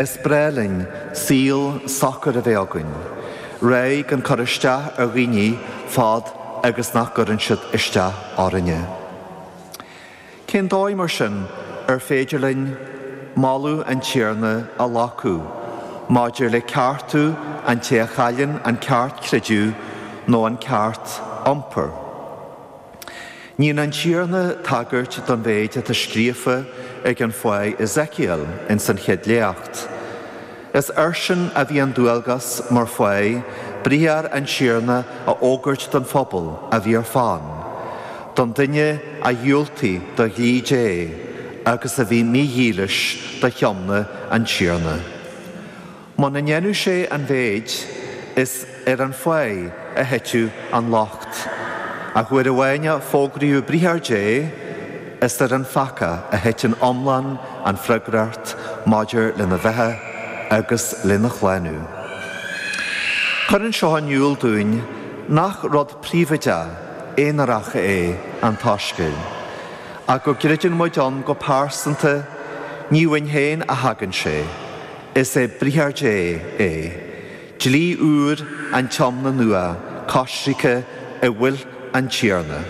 Is breá linn saol socair a bheith againn, réidh gan cur isteach ar dhaoine fad agus nach gcuireann siad isteach orainne. Cén dóigh mar sin ar féidir linn moladh an Tiarna a ghlacadh maidir le ceartú an té a chailleann an ceart creideamh nó an ceart iompair? Níonn an Tiarna tagairt don mhéid atá scríofa ag an fáidh Ezekiel ins an chéad léacht. Is airsean a bhí an dualgas, mar fáidh, briathar an Tiarna a fhógairt don phobal a bhí ar fán, don duine a dhiúltaigh do dhlí Dé agus a bhí mídhílis do thiomna an Tiarna. Muna ndéanadh sé an mhéid, is ar an fáidh a thitfeadh an locht. Ach uair amháin a fógraíodh briathar Dé, is ar an pheacach a thiteann iomlán an freagracht maidir lena bheatha agus lena shlánú. Cuireann seo in iúl dúinn nach rud príobhaideach, aonarach é an tSoiscéal. Ach go gcreideann muid ann go pearsanta, ní uainn féin a thagann sé. Is é Briathar Dé é dlí úr an Tiomna Nua Coisricthe i bhfuil an Tiarna.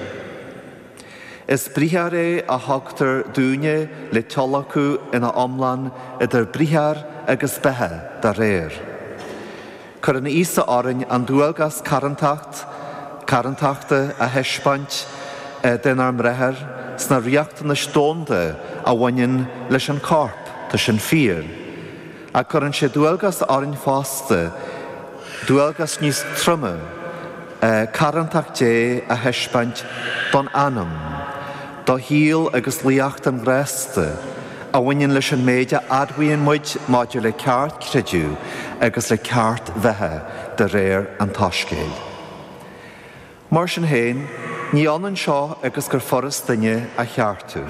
Is briathar é a thugtar dúinne le tíolacadh ina iomlán idir briathar agus beatha dá réir. Cuireann Íosa orainn an dualgas carrantacht, carrantachta, a thaispeáint denár mbráithre sna riachtanais domhanda a bhaineann leis an corp, tá sin fíor, ach cuireann sé dualgas orainn fosta, dualgas níos troime, carrantacht Dé a thaispeáint don anam. Do shaol agus luaíocht an ghrásta a bhaineann leis an méid a admhaíonn muid maidir le ceart creideamh agus le ceart bheatha de réir an tSoiscéil. Mar sin féin, ní ionann seo agus gur furast duine a cheartú.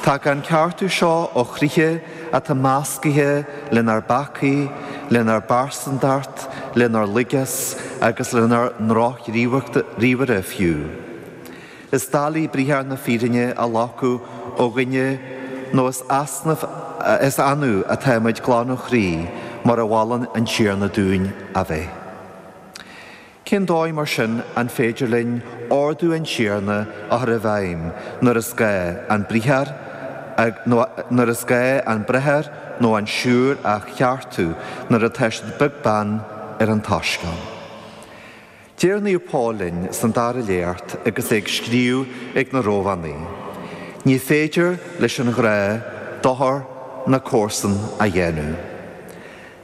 Tagann an ceartú seo ó chroíthe atá meascaithe lenár bpeacaí, lenár bpearsantacht, lenár laigeas agus lenár ndrochghníomhartha fiú. Is doiligh briathar na fírinne a ghlacadh ó dhuine nó is easnamh a is annamh atá muid glan ó chroí mar a mholann an Tiarna dúinn a bheith. Cén dóigh mar sin an féidir linn ordú an Tiarna a chur i bhfeidhm nuair is gá an briathar nó nuair is gá an bráthair nó an siúr a cheartú nuair atá siad beag beann ar an tSoiscéal? Deir Naomh Pól linn san dara léacht agus é ag scríobh chuig na Rómhánaigh, Ní féidir leis an ghrá dochar na comharsan a dhéanamh.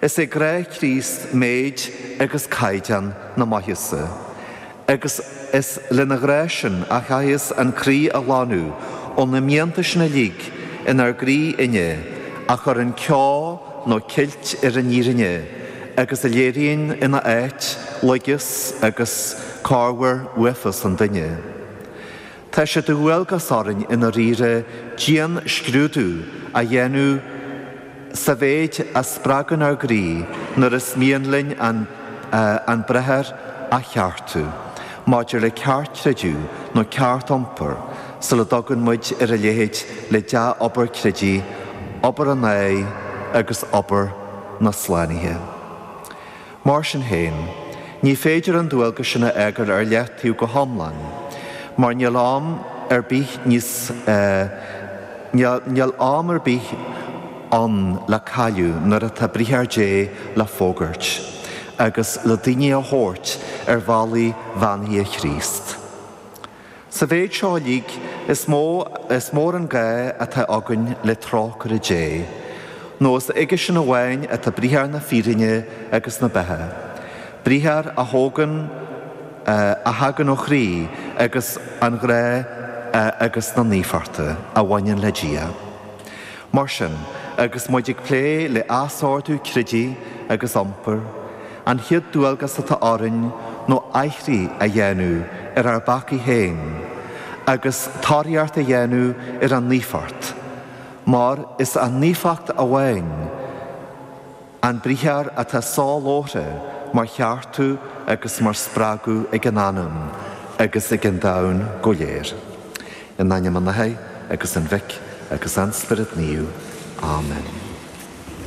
Is é grá Chríost méid agus caighdeán na maitheasa, agus is lena ghrá sin a chaitheas an croí a ghlanadh ó na mianta sin uilig inár gcroí-inne a chuireann ceo nó ceilt ar an fhírinne, agus a léiríonn ina áit laigeacht agus corruair uafás an duine. Tá sé de dhualgas orainn i ndáiríre dian-scrúdú a dhéanamh sa mhéid a spreagann ár gcroí nuair is mian linn an bráthair a cheartú maidir le ceart creidimh nó ceart iompair Sula dtugann muid ar a leithéid de dhea-obair creidimh obair an áigh agus obair na slánaithe. Mar sin féin, ní féidir an dualgas sin a fhágáil ar leataobh go hiomlán, mar níl am ar bith níos níl am ar bith ann le cailleadh nuair atá briathar Dé le fógairt agus le daoine a thabhairt ar bhealaí bheannaithe Chríost. Sa mhéid seo uilig, is mó is mór an gá atá againn le trócaire Dé, nó is aige-sean amháin atá briathar na fírinne agus na beatha, briathar a thógann, a thagann ó chroí agus an ghrá agus na naofachta a bhaineann le Dia. Mar sin, agus muid ag plé le athordú creidimh agus iompair, An chéad dualgas atá orainn ná aithrí a dhéanamh ar ár bpeacaí féin, agus tóraíocht a dhéanamh ar an naofacht, mar is an naofacht amháin an briathar atá sásúil mar cheartú agus mar spreagadh ag an anam agus ag an domhan go léir. In ainm an Athar agus an Mhic agus an Spiorad Naomh. Amen.